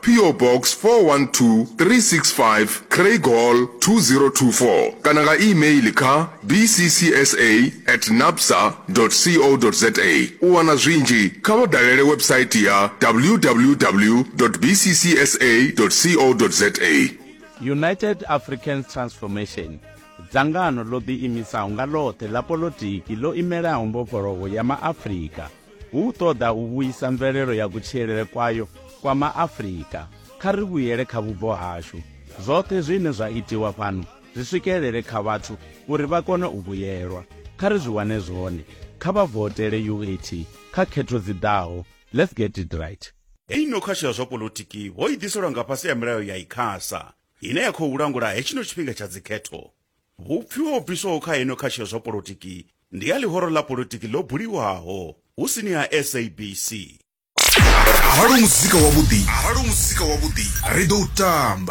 PO Box 412365 Craighall 2024 kana nga e-mail kha bccsa at nabsa co za. U wana zwinzhi, kha vha dalele website ya www bccsa co za. United Africans Transformation, dzangano ḽo ḓiimisaho nga ḽoṱhe ḽa poḽotiki ḽo imelaho mbofholowo ya Maafrika. hu u ṱoḓa u vhuisa mvelelo ya kutshilele kwayo kwa maafrika kha ri vhuyele kha vhubvo hashu zwoṱhe zwine zwa itiwa fhano zwi swikelele kha vhathu uri vha kone u vhuyelwa kha ri zwi wane zwone kha vha votele uat kha khetho dzi ḓaho let's get it right Hei no khasho ya zwa polotiki ho i ḓiselwa nga fhasi ha milayo ya ICASA ine ya khou langula hetshino tshifhinga tsha dzikhetho. Vhupfi ho bviswaho kha heino khasho zwa polotiki ndi ha ḽihoro ḽa polotiki ḽo buliwaho hu sini ha SABC. Arali u muzika wavhuḓi, arali u muzika wavhuḓi, ri ḓo u tamba.